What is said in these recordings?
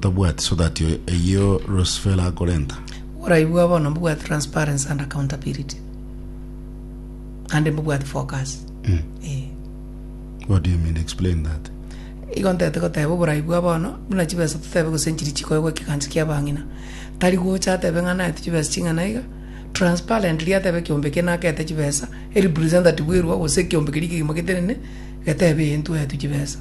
Tabwati so that eyio Rosfela akorenta. Oborayi bwao bono mbobwate transparency and accountability ande mbobwate focus Eh, What do you mean? Explain that. igo ntete goteba oborayi bwao bono buna chibesa totebe gose nchiri chikoegwa ekegancha kia abang'ina tari gocha atebe ng'a naete chibesa ching'ana iga transparently atebe ekeombe eke nakete chibesa erepresentative erwo gose ekeombe keria kegima getenene getebe eye ntuetwe chibesa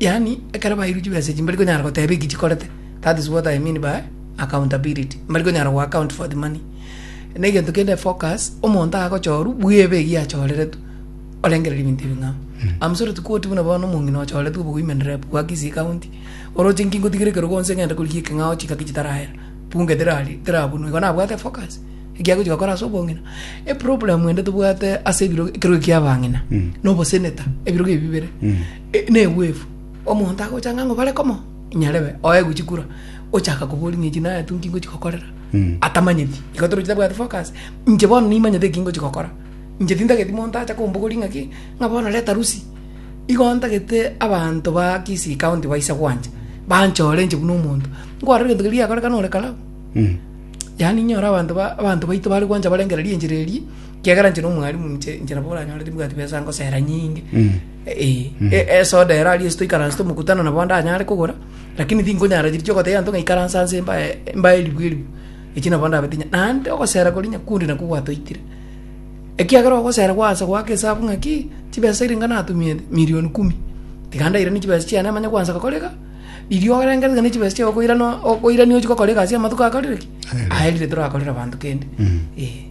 Yaani, ekero bairu chibesa echi mbari konyara goteba eki chikorete. That is what I mean by accountability. Mbari konyara go account for the money. Na egento kende focus, omonto agochorwa, bwebe eyio achoreretwe, orengereri ebinto ebing'ao. I'm sorry to quote buna bono omong'ina ochoretwe obo women rep bwa Kisii County, oroche inki ngotigere ekerogo onsi ng'ente korigia ekeng'ao chingaki chitarahera, bunge terari terabunwe, igo nabwate focus, ekiagochi gokora ase obong'ina. Eproblem ende tobwate ase ebiro ekerogo ekiabang'ina, na obosenator, ebirogo ebi bibere. Negwevu, omonto agocha ng'a ng'o bare komo nyarebe, oe gochi kura, ochaka koboria ng'a echi nayetu nki ngochi gokorera, atamanyeti. Igo toroche tabwati focus, inche bono nimanyete eki ngochi gokora. Inche tintageti monto acha kombogoria ng'a ki, ng'a bono reta rusi. Igo ntagete abanto ba Kisii county baise gwancha, banchore inche buna omonto, nkwarore egento keria giakorekana ore karau, yaani inyore abanto ba abanto baito bare gwancha barengereria enchera eria, kiagera inche na omwarimu inche inche nabo oranyorete mbwati besa ngosera nyinge. Ee, esoda ero aria esito ikaranse tomokutano nabo ndanyare kogora, lakini tinkonyara chiria chi'ogotebia abanto ng'a ikaransa nse mbae mbae eribu eribu, echio nabo ndabete inya. Naende ogosera koria nyakundi nakwo gwatoitire, ekiagera ogosera gwansa goaka esabu ng'a ki, chibesa chiria niga natumiete, milioni kumi. Tiga ndairanie chibesa chiane manye gwansa gokora iga, riria orengereri gane chibesa chiago okoirana okoirania ochia gokora egasi amatuko akarire ki? Aerire torakorere abanto kende, ee.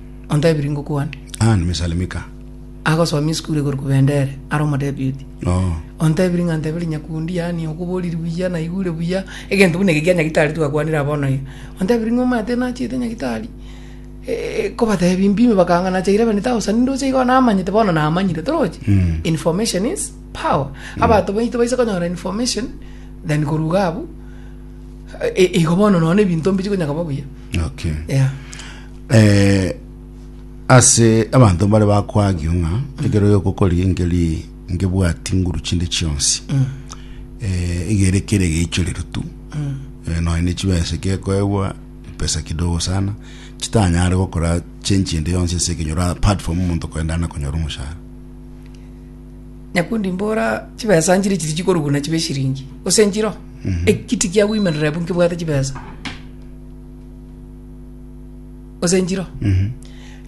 Ontebirie ngokwane. Ah, nimesalimika. Agosomia esukuru igoro kobenda ere, are omodeputy. Oh. Ontebirie ng'a nteberie nyakundi, yaani okoboriri buya, naigure buya, egento buna eke kia nyagitari twakwanire aa bono iga. Ontebirie ng'a omanyete nachete nyagitari, eh, kobatebia mpime bakanga nacha eleven thousand, ndoche igo namanyete bono namanyire, torochi? Mm. Information is power. Abanto baito baise konyora information than korwa iga abwo, eh, igo bono nonya ebinto mbichi konya koba buya. Okay. Yeah. Eh, ase abanto mbare bakwagio ng'a ekero yokokori engeri ngebwati nguru chinde chionsi eh, egere kere geichorero tu eh, nonya ne chibesa kekoegwa pesa kidogo sana chitanyare gokora chenchi ende yonsi ase ekenyoro apart from omonto koendana konyora omoshahara nyakundi mbora chibesa nchiri chiri chikoruguna chibe shiringi gose nchiro ekiti kiagoimerera ebu nkibwate chibesa gose njiro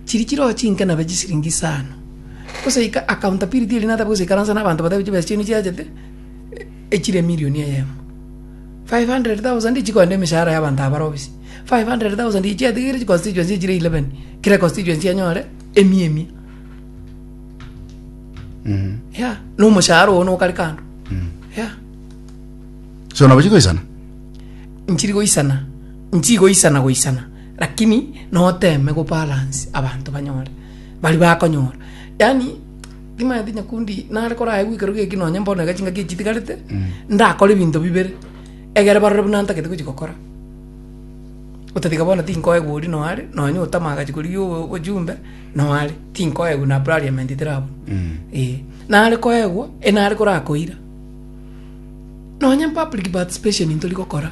chiri chiro chinke nabe chisiringi isano gose ika akaunta piri tiri natabe gosaikaransa na abanto batabe chibesa chiaino chiachete echire emirioni eyemo 500,000 chikoenda emeshahara ya abanto aba bare obisi 500,000 eye chiatigire chi constituency chire 11 kera constituency enyore emia emia ya na omoshahara ogo nokare kando ya so nabo chigoisana nchiri goisana Nchigoisana-goisana, lakini noteme gobalance abanto banyore, baria bakonyora. Yaani, timanyete nyakundi nare korae gwekero geki nonye mbono iga chingaki echi chitigarete, ndakore ebinto bibere, egere barore buna ntagete gochia gokora. Otatiga bono tinkoegwa oria noo are, nonye otama agachi korigia o- ojumbe, noo are, tinkoegwa na parliament terabu. Eeh. Nare koegwa, enare korakoira, nonye public participation ntori gokora.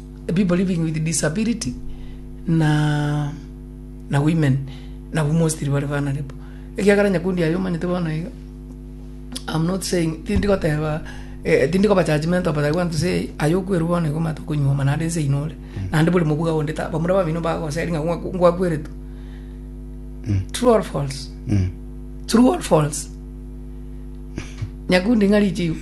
people living with disability na na women nabwo mostly bare vulnerable ekiagera nyakundi aye omanyete bono iga am not saying tindi goteba eh, tindi koba judgmental but I want to say aye okwerwa bono iga omanyete okonyuoma naende ense ino ore naende bore mobuga onde ta bamura babino bagoseri ng'a ngwa- ngwakweretwe true or false true or false Nyakundi ng'a richigu.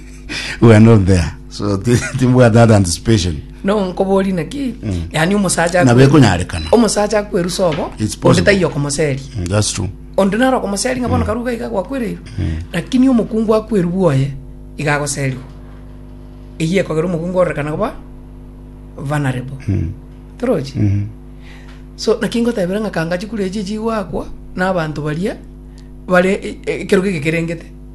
We are not there. So ti- timbwate that anticipation. No nkobori naki. Yani omosacha. Nabo ekonyarekana. Omosacha akwerusa obo. It's Onde possible. taiyo komoseri. Mm, That's true. Onde naro komoseri ng'a bono karuga iga gwakwereirwe. Lakini omokungu akweru bwoye iga agoserwa. Eyio ekogera omokungu orekana koba vulnerable. Torochi. So naki ngotebera ng'a kanga chikura echi echi gwakwa na abanto baria bare e- e- ekerogo eke kerengete.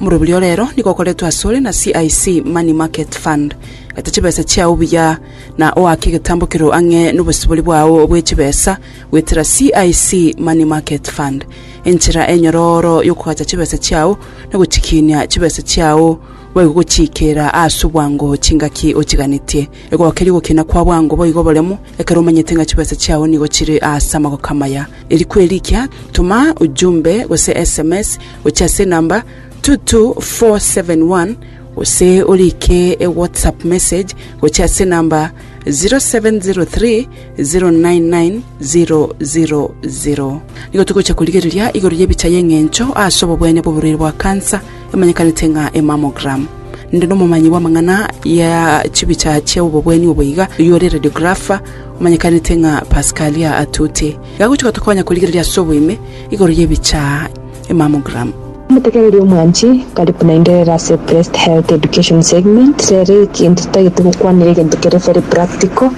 Omoroberio o rero nigo okoretwe asore na CIC Money Market Fund. Gata chibesa chiao buya na oake egetambo keroo ang'e nobosibori bwao bwe chibesa goetera CIC Money Market Fund. Enchera enyorooro yokogacha chibesa chiao na gochikiinia chibesa chiao boigo gochiikera aase obwango chingaki ochiganetie. Egokeria ogokina kwa bwango boigo oboremo ekero omanyete ng'a chibesa chiao nigo chire aase amagoka amaya. Eriku erikia, toma ujumbe gose sms gochia ase enamba 22471 gose orike ewhatsapp message gochia ase enamba 0703 099 000. Nigo togochia korigereria igoro y'ebicha y'eng'encho ase obobwene bw'oborwaire bwa kansa emanyekanete ng'a emammogram. Ninde nomomanyi bw'amang'ana ya chibicha chia obobweni obo iga, oyio ore radiographer omanyekanete ng'a Pascalia Atute. Iga agochia gotokonya korigereria ase oboime igoro y'ebicha emammogram. Omotekereria omwanchi, karibu naende rero ase Breast Health Education Segment. Rero egento titagete gokwanera egento kere very practical.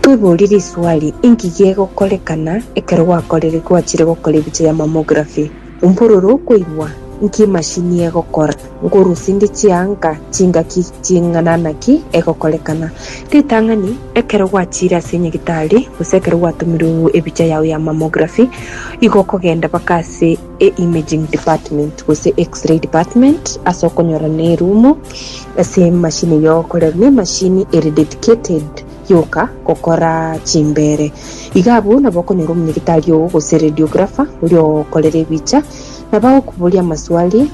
Tweborie riswali, Inki gegokorekana ekero gwakorire, gwachire gokora ebicha ya mammography? Umbororo okoigwa, Inki emashini egokora? Nkorusinde chianga chingaki ching'ana naki egokorekana. Ritang'ani, ekero gwachiire ase nyagitari, gose ekero gwatomirwe ebicha yao ya mammography, igo okogenda mpaka ase e imaging department gose X-ray department ase okonyora ne erumu ase emashini eyio egokorerwa ne emashini ere dedicated yoka gokora chimbere. Iga abwo nabo okonyora omonyagitari oo gose radiographer oria ogokorera ebicha. Nabagokuboria amaswali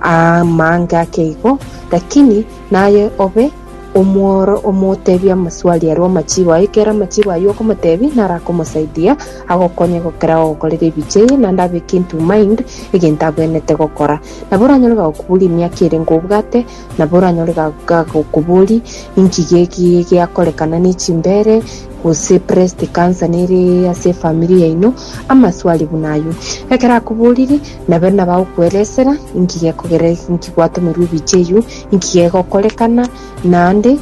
amange ake igo, lakini naye obe omworo omotebie amaswali aria amachibo aye. Ekero amachibo ayio okomotebia, naro akomosaidia agokonye gokera ogokorera ebiche eye, naende abeke into mind egento abwenerete gokora. Nabo oranyore bagokuborie emiaka ere ngobwate. Nabo oranyore gakoboria, Inki geke geakorekana ne chimbere, gose breast cancer nere ase efamiri yaino? Amaswali buna ayio. Ekero akoborire, nabe nabo agokoeresera inki gekogera, inki gwatomerwe ebiche eyio, inki gegokorekana, naende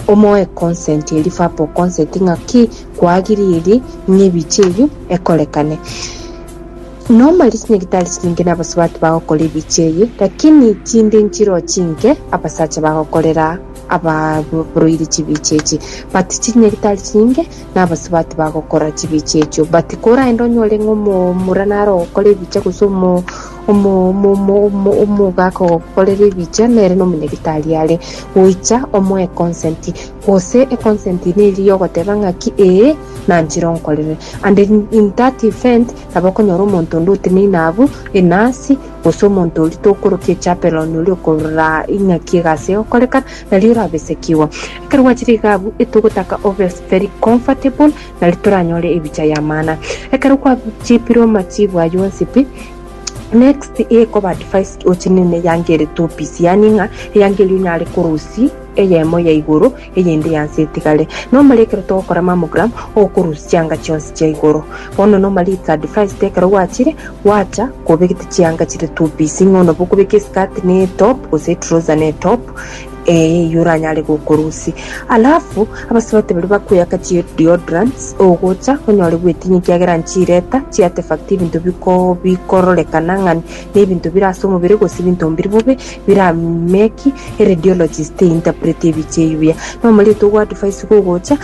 omoe consent eria, verbal consent, ng'a ki, kwagiririe ng'a ebiche eyio ekorekane. Noma risinyaritari chiringe nabasubati bagokora ebichie eye, lakini tinde nchiroche inke abasacha bagokorera abaroiri chibichie echi. But chirinyaritari chiringe nabasubati bagokora chibichie echio. But koraende onyore ng'a omomura nare ogokora ebichia gose omo omo omo omo omo omogaka ogokorera ebichia nere nomonyaritari are goicha omoe consent gose econsent ine eria yogoteba ng'aki ee nanchire onkorere and in that event Nabo okonyora omonto onde oteneine abwo, enasi, gose omonto oria tokorokia echapeloni oria okorora ing'aki egasi egokorekana, nario orabesekigwa. Ekero gwachire iga abwo, etogotaka obe very comfortable, nario toranyore ebicha y'amana. Ekero kwachipire omachibu ayio onsi pi, next ekoba advised ochinine eyangerie topies, yaani ng'a eyangerie onyare korusia eyemo ya igoro, eyende y'ense etigare, nomare ekero togokora mammogram okorusia chianga chionsi chia igoro. Bono nomare it's advised ekero gwachire gwacha kobegete chianga chire two piece ng'a onaba okobeka eskirt ne etop gose etrouser ne etop eh eyio oranyare gokorusi. Alafu abasubati baria bakoyaka chi deodorants ogocha onyore bwetinya ekiagera nchireta chiartefact ebinto biko bikororekana ng'a Nebinto bire ase omobere gose ebinto mbiri bobe bira make a radiologist to interpret ebiche eyio buya. Na omorieto ogo advice gogocha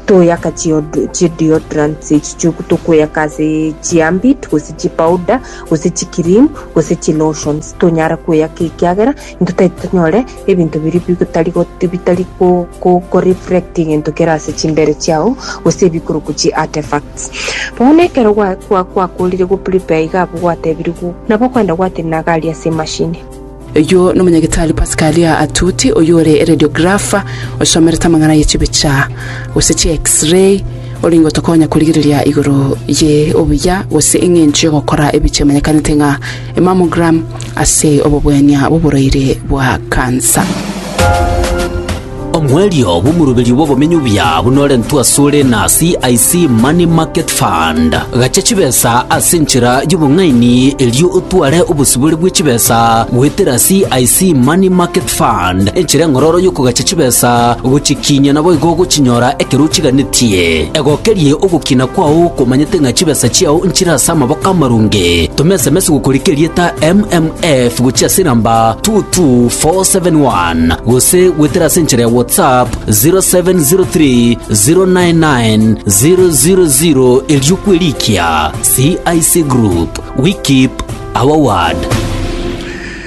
toyaka chi deodorants echi chioku tokoyaka ase chi ambit gose chi powder gose chi cream gose chi lotions tonyara koyaka ekiagera Ntotaete tonyore ebinto biria bitari go- bitari go- go- koreflect egento kere ase chimbere chiao, gose ebikorokwa chi artefacts. Bono ekero gwa- gwa- gwakorire go prepare iga abwo gwatebirie go- nabo okwenda gwatenena iga aria ase emashini. Oyio nomonyagitari Pascalia Atuti oyore eradiographer osomerete amang'ana ye chibicha gose chi X-ray, orenge otokonya korigereria igoro ye obuya gose eng'encho yogokora ebicha emanyekanete ng'a Mammogram ase obobwania bw'oboraire bwa kansa. Omwerio bw'omoroberio bw'obomenyo obuya buna orentwe asore na CIC Money Market Fund. Gachia chibesa ase enchera y'obong'aini erio otware obosibore bwe chibesa goetera CIC Money Market Fund, enchera eng'ororo y'okogacha chibesa gochikiinia naboigo ogochinyora ekero ochiganetie. Egokerie ogokina kwao komanyete ng'a chibesa chiao nchire ase amaboko amarunge. Toma sms gokoria kerieta MMF gochia ase enamba 22471 gose gwetere ase enchera ya WhatsApp 0703099000 erio kwerikia. CIC Group, we keep our word.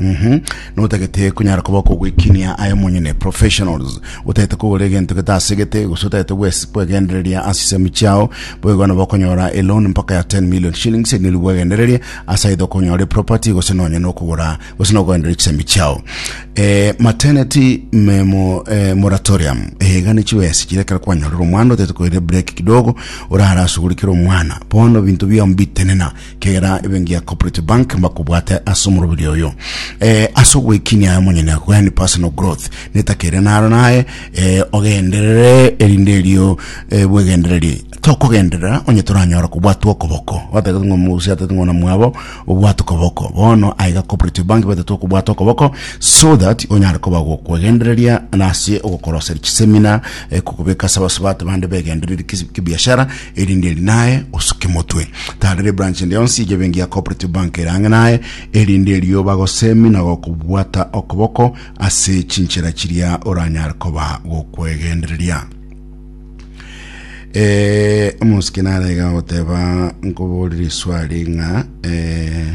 Mhm. Notagete kunyara koba kogwekinia aye monyene professionals. Otagete kogora egento getasegete gose otagete gwes- kwegendereria ase chisemi chiao. Boigo nabo okonyora a loan mpaka ya 10 million shillings eri nerigo bwegendererie ase aidha okonyora eproperty gose nonye nokogora gose nogoenderia chisemi chiao. Eh, maternity memo eh, moratorium eyaiga ne chiwesi chiria ekero kwanyorire omwana otagete koira break kidogo orare asugurikere omwana bono binto biao mbitenena kera ebenki ya corporate bank mbakobwate ase omorobiri oyo eh, ase ogwekinia aye monyene yani personal growth netakere naro naye eh, ogenderere erinde erio eh, bwegendereri tokogenderera onye toranyora kobwatwa okoboko batagete ng'o mugusi atete ng'ona mwabo obwate okoboko bono aiga cooperative bank batete okobwata okoboko so that onyare koba gokwegendereria nase ogokoroseria chisemina eh, kokobeka ase abasubati bande begendereri kisi- kibiashara erinde eri naye osuke motwe tarere branch ende yonsi ye bengi ya cooperative bank ere ang'e naye erinde erio bagosemi na gokobwata okoboko ase chinchera chiria oranyare koba gokwegendereria eh, omusiki nare iga goteba nkoborire iswari ng'a eh,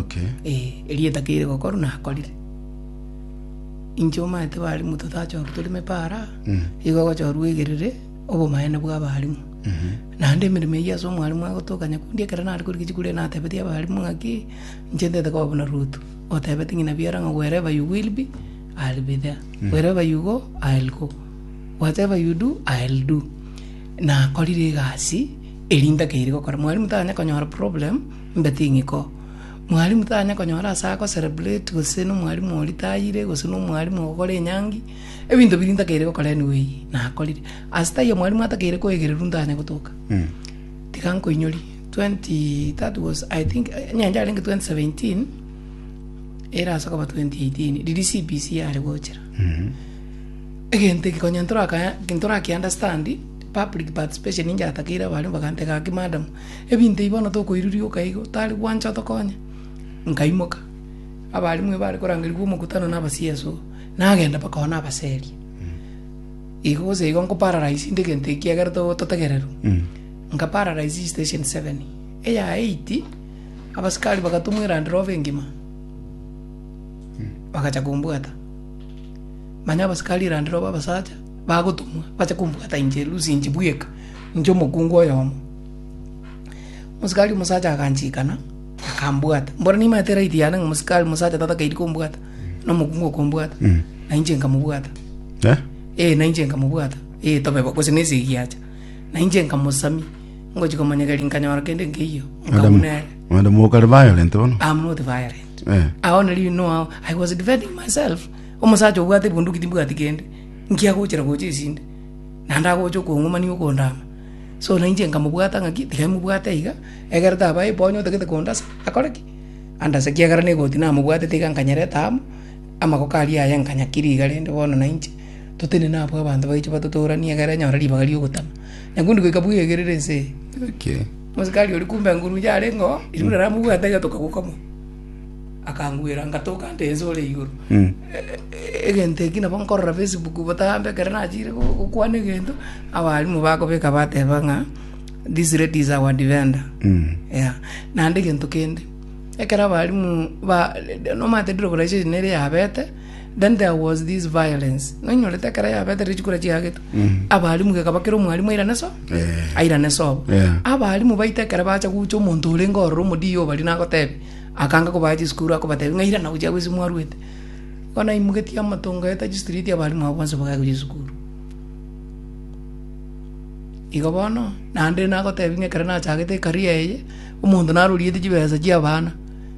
Okay. Eh, erio etakeire gokorwa nakorire inche omanyete barimu totachorwa tore mepara Mm. igo gochorwa egerere obomaene bwa abarimu Mhm. naende emeremo eyio ase omwarimu agotoka nyakundi ekero nare korika chikuru ere natebetie abarimu ng'aki inche ntete koba buna ruto otebete ng'ina biara ng'a wherever you will be I'll be there wherever you go I'll go whatever you do I'll do nakorire egasi Erinde ake iri gokora. Mwalimu tanya konyora problem, mbe ting'iko. Mwalimu tanya konyora ase ago celebrate gose na omwalimu oria tayire gose na omwalimu ogokora enyangi, ebinto biria ntakeire gokora anyway nakorire. Ase taiyo mwalimu atakeire koegererwa ntanye gotoka. Tiga nkoinyorie, twenty that was I think enyancha yarenge twenty seventeen, ere ase okoba twenty eighteen riria CBC yare gochera. Egento eke konya ntoraka ntorakiunderstand Public participation ninche natakeire abaria bagantega gaki madam ebinto ebi bono tokoirurioka igo tari gwancha otokonye, nkaimoka abarimu aba bare korangerigwa omokutano na aba CS oo nagenda mpaka one abaserie igo gose igo nkoparalyze inde egento eki egere to- totegererwe nkaparalyze eye station seven eya eight abasikari bagatumwa eland rover engima bagacha kombwata manya abasikari eland rover abasacha. bagotomwa bache kombwata inche Lusi inche bweka, inche omokungu oyomo. Omosikaari omosacha aganchikana, akambwata. Mbora nimanyete right yane ng'a omosikaari omosacha tatakeiri kombwata, na omokungu okombwata, na inche nkamobwata. Eh? Eh, na inche nkamobwata. Eh, tobe bo- gose nese egiacha. Na inche nkamosamia, ngochi komonyegeri nkanyora kende nkeiyo, Madam, nkauna ere. madam mokare violent bono. I'm not violent. Eh. Aoneri noao, I was defending myself. Omosacha obwate bunduki timbwati kende. Inki agochera gocha esinde? Naende agocha okong'umania okondaama. So na inche nkamobwata ng'aki, tiga imobwate iga, egere taba aye onye otagete kondasa, akore ki? Andase ekiagera na egoti namobwatete iga nkanyerete amo, amagoko aria aye nkanyakiria iga rende bono na inche, totenene abwo abanto baiche batotooranie egere nyore ribaga ri'ogotama. Na nkondi goika bwegerere ense eye. Mosikari oria kumbe nguru inche arenge oo, erinde aramobwate iga tokagoka mono. akangwera ngatoka nte ense ore igoro Mm. E- e- egento eki nabo nkorora facebook botambe ekero nachire go- gokwana egento abarimu bakobeka bateba ng'a this lady is our defender Mm. yeah. naende egento kende ekero abarimu ba nomanyete ndire oboraichiri nere yabete Then there was this violence. Nonyorete ekero yabete rire chikura chiagetwe. Abalimu geka bakera omwalimu airane so. Eh. Airane so. Yeah. Abalimu baite ekero bacha gucha omonto orenge ororo omodii obari nagotebi. Akanga kobaa chisukuru akobatebi ng'a irana gochia gwesi mwarwete. Bono aimogetie amato ngoeta chistreet abalimu abo bonsi bagaika gochia chisukuru. Igo bono naende nagotebi ng'a ekero nachagete ecareer eye, omonto naroriete chibesa chiabana.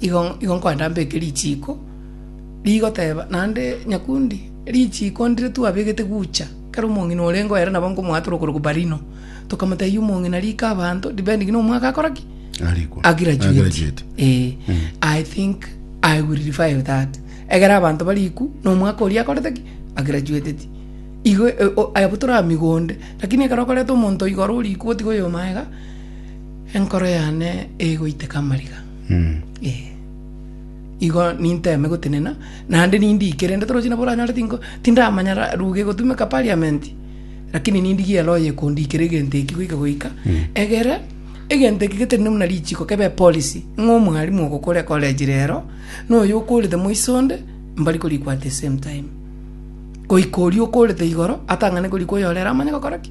igo igo nkoenda mbeke richiiko, rigoteba naende nyakundi, richiiko ndire twabegete gucha, ekero omong'ina orenge oye nabo nkomoata ore okorokwa Barino, tokamotebia omong'ina rika abanto depending na omwaka akora ki? Arikwa. a graduate. Agraduate. Eh, I think I will revive that. Egere abanto barikwu na omwaka oria akorete ki? A graduateti. Igo eh, o- abwo tore amigo onde, lakini ekero okoreta omonto oyo igoro orikwu gotiga oyomo aye iga, Enkoro yane egoiteka amariga, ee, igo ninteme gotenena, naende nindigie, kerende toroche nabo oranyare tinko tindamanya ra- ruga egotumeka parliament, lakini nindigie ere oye ekondikera egento eki goika goika, egere egento eke getenenwe buna richiko kebe epolicy, ng'a omwalimu ogokora ecollege rero, na oyo okorete moiso onde, mbari korikwa at the same time. Goika oria okorete igoro, atang'ane korikwa oyorero amanye gokora ki.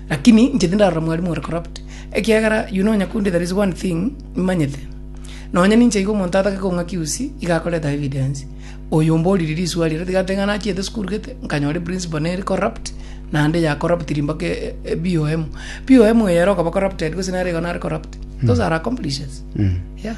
Lakini inche tindarora mwarimu ore corrupt, ekiagera you know nyakundi there is one thing nimanyete, nonya ninche iga omonto atake kong'aki usi iga akoreta evidence, oyo omboriri risuari ere tiga ante ng'a nachiete esukuru gete nkanyora eprinciple nere corrupt naende ya corruptiri mpaka e- e- BOM. BOM eye ere okaba corrupted gose nere igo nare corrupt. Those are accomplishers. Yeah.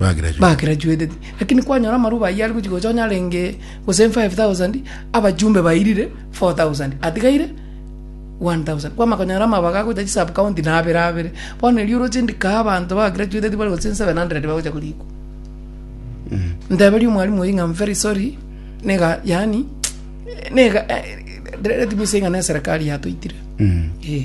Bagraduate. bagraduated lakini kwanyora amaruba ayio ari gochia gocha onye arenge gose 5000 abajumbe bairire 4000 atigaire 1000 kwama konyora amabaga agocha chi sub county na abere abere bono erio oroche ndika abanto ba graduated bare gose 700 bagocha korikwa nteberia omwalimu oyi ng'a I'm very sorry nega yaani nega eh, let me say ng'a ne serikali yatoitire eh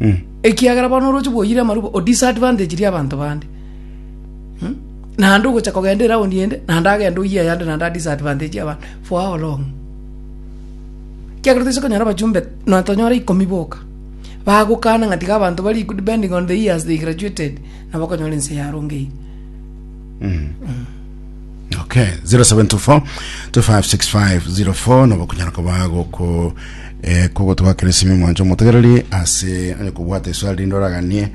Mm. ekiagera bono oroche bwoyire amarubo o disadvantage ria abanto bande Hmm? naende ogocha kogenda eraundi ende naende agende oyie ayande naende a disadvantage abanto for how long ekiagera toise konyora abachumbe nonya tonyore ikomi boka bagokana ng'a tiga abanto bari equal depending on the years they graduated nabo okonyora ense yarongeirie Okay, 0724 256504 nobo kunyara koba goko eh, kogotwakera esimi mwancho motegereri ase onye kobwata eswali rinde oraganie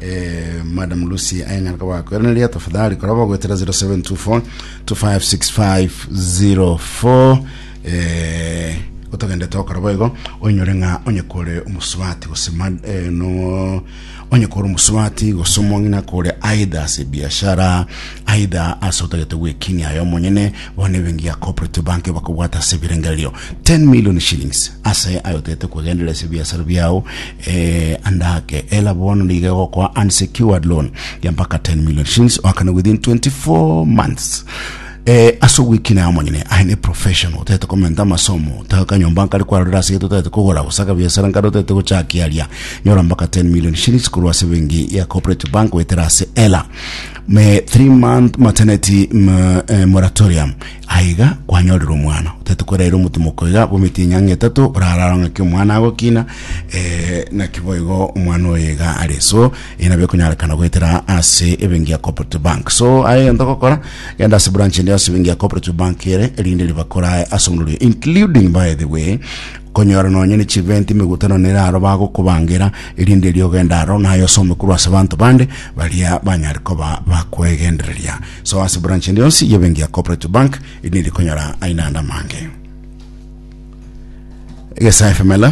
eh, madam lucy anyara koba akoereneria tafadhali koraba ogwetera 0724 256504 eh, otogendete okora boigo onyore ng'a onye kore omosubati gose mad- eh, no Onye kore omosubati gose omong'ina kore aidha ase ebiashara, aidha ase otagete gwekinia aye omonyene, bono ebenki ya Cooperative Bank bakobwata ase ebirengererio 10 million shillings ase aye otagete kwegenderera ase ebiasara biao eh, ande ake ela bono nigo egokoa unsecured loan ya mpaka 10 million shillings oakane within 24 months Eh, ase ogwekina amo nyene, I am a professional, otagete komenta amasomo, otaka kanyomba nkare kwarorera ase egete otagete kogora, gosaka biasara nkare otagete gochakia aria, nyora mpaka 10 million shillings korwa ase bengi ya Cooperative Bank goetera ase ela. Me 3 month maternity m, eh, moratorium, aiga kwanyorera omwana, otagete koraira omotomoko iga bometi enyanga etato, orararo ng'aki omwana agokina, eh, naki boigo omwana oyo iga are. So, ina bikunyarekana goetera ase ebenki ya cooperative bank so aye gento gokora genda ase branch ende ase ebenki ya cooperative bank ere erinde ribakorae ase omorori including by the way konyora nonye ne chiventi migutano nere aro bagokobangera erinde eri ogenda aro naye osome korwa ase banto bande baria banyare koba bakwegendereria so ase branch ende yonsi yebenki ya cooperative bank erinde rikonyora aina ande amange egesa fml